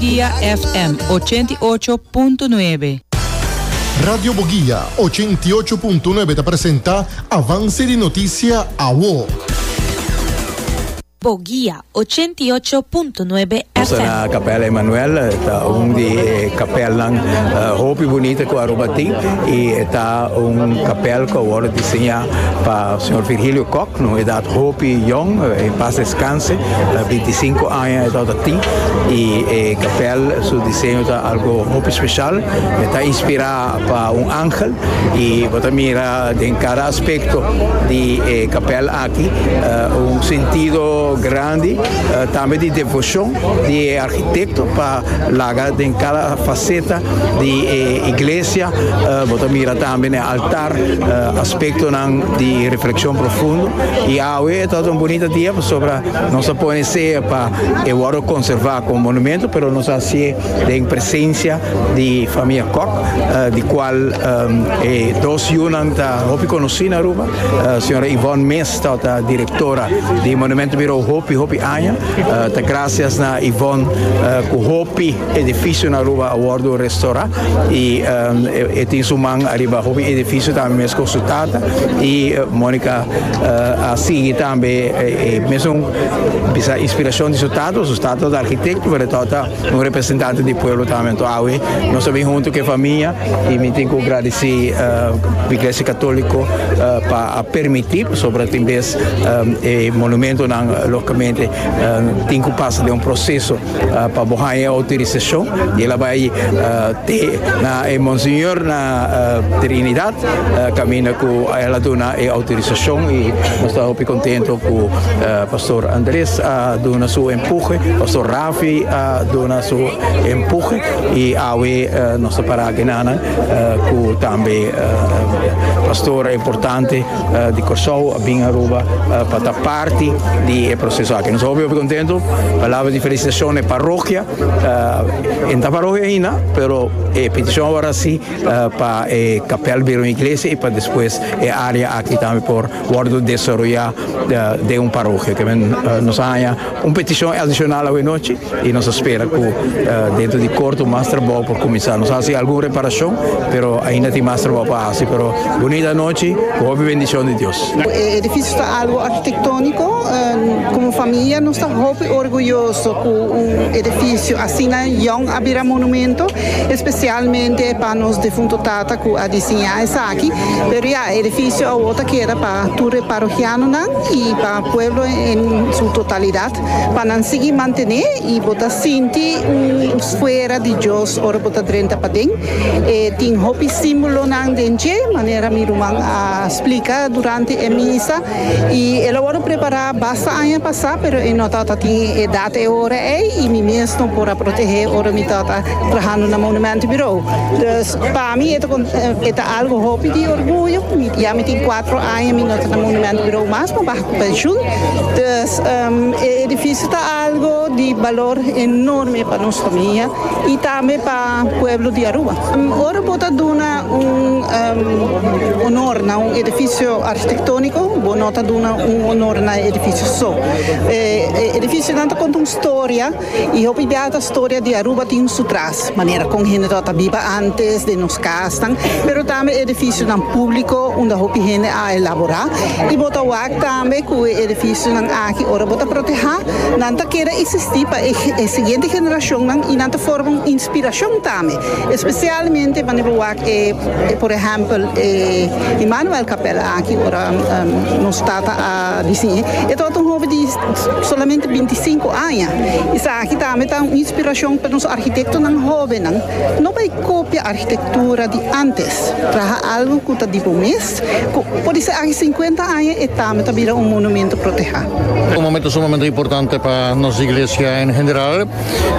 Boguia FM ochenta i ocho punto nuebe. Radio Boguia ochenta i ocho punto nuebe ta presenta Avance di Noticia Awo. Boguia ochenta i ocho punto nuebe Nos ta na FM. Capella Emmanuel, e ta un di e kapelnan eh, hopi bunita ku Aruba tin i e ta un kapel ku a wòrdu diseñá pa señor Virgilio Kok, na un edad hopi yòn, eh, en pas descanse, eh, 25 Aña e tabata tin y e capel su diseño ta algo hopi special. E ta inspira pa un angel y bo ta mira den cada aspecto di e capel aki un sentido grandi tambe di devocion di e architecto pa laga den cada faceta di e iglesia. Bo ta mira tambe n'e altar aspectonan di reflexion profundo y awe e tabata un bunita dia pasobra Nos a pone sea pa e wòrdu konservá komo monumentu, pero nos a hasié den presensia di famia Kok, di kual e dos yunan ta hopi konosí na Aruba. Señora Yvonne Mes ta ota direktora di Monumentenbirou hopi, hopi aña. Ta grasias na Yvonne ku hopi Edificio na Aruba a wordo restora y e tin su man ariba hopi edificio tambe mes cu su tata y Monica a sigui tambe e mesun bisa inspiracion di su tata, su tata ta architecto pero e tata ta un representante di pueblo tambe enton awe nos a bin hunto cu e famia y mi tin cu gradici Iglesia Catolico pa a permiti pasobra tin bes e monumentonan logicamente tin cu pasa den un proceso. Pa bo haña e outorisashon y el a bai te na e Monseñor na Trinidad caminda cu el a duna e outorisashon y nos ta hopi contento cu Pastor Andres a duna su empuje, Pastor Rafi a duna su empuje y awe nos ta para aki nanan cu tambe Pastor e importante. di Kòrsou a bin Aruba pa ta parti di e proseso aki. Nos ta hopi hopi kontentu. Palabra di felisitashon e parokia. E no ta parokia ahinda, pero e petishon awara si pa e kapèl bira un iglesia i pa despues e área aki tambe por wòrdu desaroyá den un parokia. Nos a haña. Un peticion adicional awenochi y nos a spera cu dentro di corto mas trabao por cuminsa. Nos a haci algun reparacion pero ainda tin mas trabao pa haci pero bunita anochi cu hopi bendicion di Dios. E edificio ta algo arquitectonico. Como familia nos ta hopi orguyoso cu un edificio asina yong a bira monumento especialmente pa nos defunto tata cu a disiña esaki. Pero ya e edificio awor ta keda pa tur e parohianonan y pa pueblo en su totalidad pa nan sigui mantené y bo ta sinti un fuera di Dios ora bo ta drenta paden. E tin hopi símbolonan den dje, manera mi ruman a splica durante e misa y el a wòrdu prepará basta aña pasá pero e no ta ta tin e edad e ora ei y mi mes no por a protegé ora mi ta ta trahando na Monumento Bureau. Dus pa mi e ta algo hopi di orguyo, ya mi tin cuatro. Aña mi no ta na Monument Bureau mas, mi baha cu pensioen. Dus e edificio ta algo di balor enorme pa nos famia y tambe pa pueblo di Aruba. Ora bo ta duna un honor na un edificio architectonico, bo no ta duna un honor na e edificio so. E edificionan ta conta un storia. Y hopi bia ta storia di Aruba tin su tras, manera con hende ta ta biba antes, den nos casnan, pero tambe edificionan publico unda hopi hende a elabora. Y bo ta wak tambe cu e edificionan aki ora bo ta proteha, nan ta keda existi pa e e siguiente generacionnan y nan ta forma un inspiracion tambe, especialmente wanneer bo wak e e por ehempel e Immanuel Capella aki ora nos tata a diciñe. E tabata un hopi di. Solamente binti i sinku aña. Esaki tambe ta un inspirashon pa nos arkitektonan hóbennan. No bai kopia arkitektura di ántes. Traha algu ku ta di bo mes, ku por di esaki sinkuenta aña e tambe ta bira un monumentu protehá. Un momentu sumamente importante pa nos iglesia en general.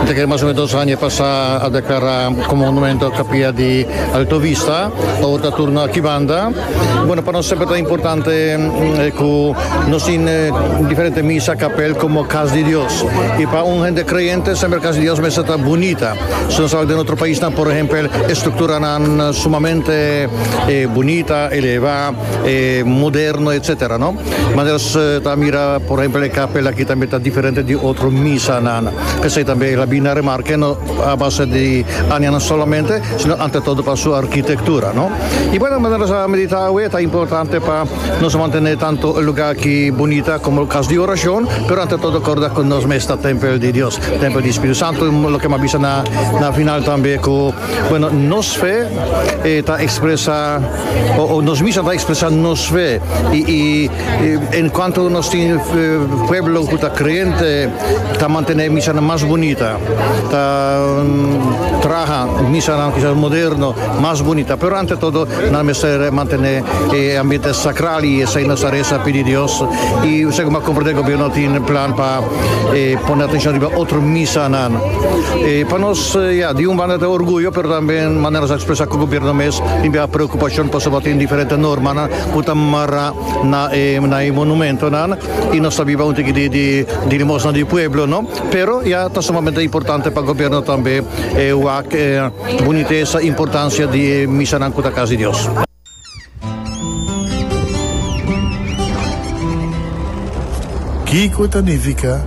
Mi ta kere mas o menos dos aña pasá a deklará komo monumentu kapia di Alto Vista. Awor ta turno akí banda. Bueno, pa nos semper ta importante cu nos tin diferente misa, capel como Cas di Dios. Y pa un hende creyente semper Cas di Dios mester ta bunita. Si nos tabata den otro paisnan, por ehempel, e structuranan sumamente bunita, eleva, moderno, etcetera, no? Manera nos ta mira, por ehempel, e capel aki tambe ta diferente di otro misanan. P'esei tambe el a bini a remarca, no a base di añanan solamente, sino ante todo pa su arquitectura, no? Y bueno, manera nos a medita awe, ta importante pa nos mantene tanto e lugar ki bunita como cas di oracion, pero ante todo corda cu nos mes ta tempel di Dios, tempel di Spiritu Santo, loke mi a bisa na na final tambe cu, bueno, nos fe ta expresa o nos misa ta expresa nos fe y y en cuanto nos tin pueblo cu ta creente ta mantene e misanan mas bunita. Ta traha misanan kisas moderno, mas bunita, pero ante todo nan mester mantené e ambiente sakral i esei nan sa resa pidi Dios. I segun bo a komprendé gobièrnu tin plan pa pone atenshon riba otro misanan. Pa nos, ya, di un banda ta orguyo, pero tambe manera nos a ekspresá ku gobièrnu mes tin bia preokupashon pasobra bo tin diferente normanan ku ta mará na e monumentonan i nos ta biba un tiki di limosna di pueblo, no? Pero ya ta sumamente importante pa gobierno tambe e wak e bunitesa, importancia di e misanan cu ta Cas di Dios. Kico ta nifica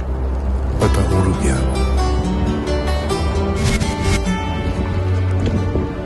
pa ta un rubiano?